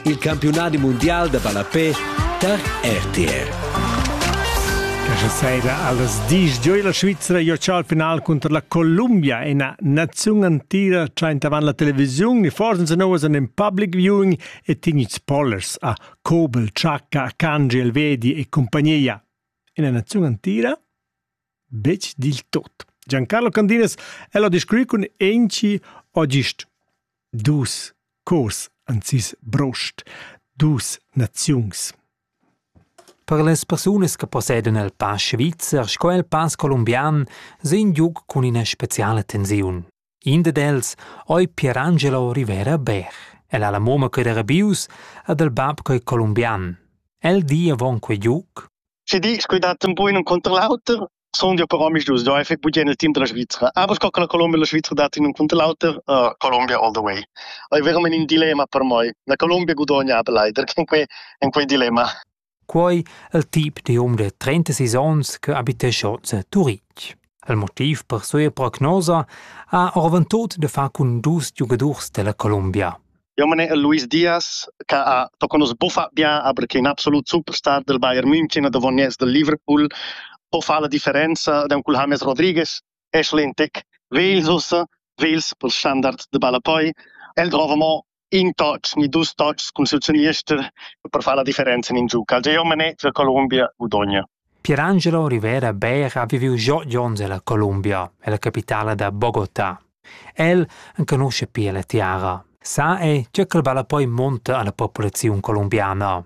Il campiunadi mundial da ballapè tar RTR. Questa sera allas 10 gioi la Svizzera giocà al final contro la Columbia, ina naziun antira traint avant la televisiun e forse se novas in public viewing e tignic spoilers a Kobel, Chaka, Kanji, Elvedi e compagnia. Ina naziun antira? Betg dil tot. Giancarlo Candinas el ha descrit cun enci o gist dus cors an sis brost, dus naziungs. Per las persunas che possedan il pass svizzer sco il pass colombian sin giug cun ina speciala tensiun. In dad els oi Pierangelo Rivera Bär. El ha la mamma che era bius ed il bab che è colombian. El di avon quei giuc. Si dics quei dat un bun un conter l'auter, son ja però mis dus doi effect bugen il team della Svizzera. Aber sco che la Colombia e la Svizzera dat in un conter l'auter, uh, Colombia all the way. Oi veramente in dilemma per moi. La Colombia gudogna aber leider in quei in quei dilemma. Quei el tip da hom da trentasis onns che habitescha oz a Turitg. Il motiv per sia prognosa ha oravantut da far cun dus giugadurs dalla Colombia. Eu mane el Luis Diaz, che ha tocca nos buffa bien, aber che è un absolut superstar del Bayern München e davoniers del Liverpool. Po fa la differenza da un cul James Rodriguez, Ashley Tech, Wales ussa, Wales pel standard de Balapoi. El drova mo in touch ni dus touchs cun sut seniester per far la differenza in in giug. Algeromane za Colombia gudogna. Pierangelo Rivera Beer ha viviu giò onns ella Colombia, ella capitala da Bogotà. El enconusce pia la tiara. Sa è che quel vala poi monta alla popolazione colombiana.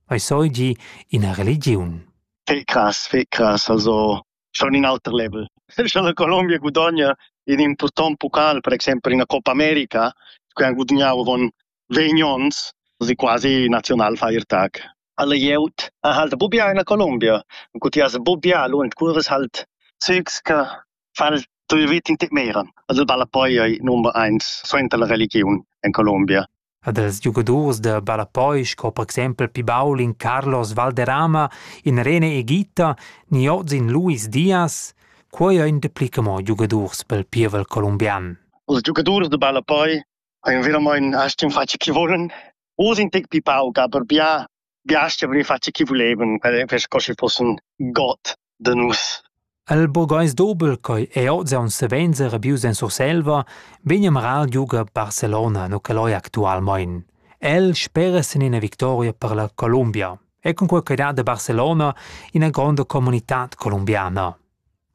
Ei soi gi ina religiun. Fe cras, fe cras, also schon in auter level. Scha la Colombia gudogna in impurtant pocal, per exempel ina Copa America, che han gudagnau avon vegn onns, si quasi Nationalfeiertag. Alle glieud ha halt bubbia in la Colombia. Und gut, ja, bubbia, lu en curves halt zügs che fal tu vit in te meran. Also balla poi ei number eins suenter la religiun en Colombia. e dals giugadurs da ballapoi sco per exempel pi baul in Carlos Valderrama, in Rene Egita ni oz in Luis Diaz, quei ein dapli che mo giugadurs pel pievel colombian. Els giugadurs da ballapoi ein veramein aschi in faccia chi volan. Oz in tec pi pauc, aber bia Biasts avrien fatg chi vulevan per sco schi fussen god da nus. El burgais dobel ch'ei ei oz aunc savens rabius en Surselva vegn a marar giuga Barcelona no ch'el ei actualmein. El spera sin ina victoria per la Columbia e cunquei ch'ei dat a Barcelona ina gronda comunitad columbiana.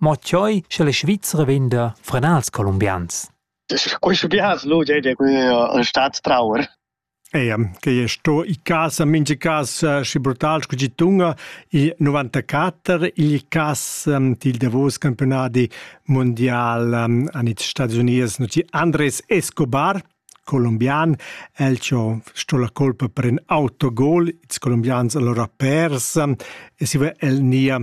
Mo tscheu sche la Svizra vegn da frenals columbians. Quei sche biars lu ei ein stats trauer. Eia, quei ei sto in casa, mintga casa schi brutal sco tgi tunga, il novantaquatter, igl cas dil davos campiunadi mundial han ils Stadis Unids nuti Andres Escobar, colombian, el cho sto la colpa per in autogol, ils colombians allora pers e siva el nia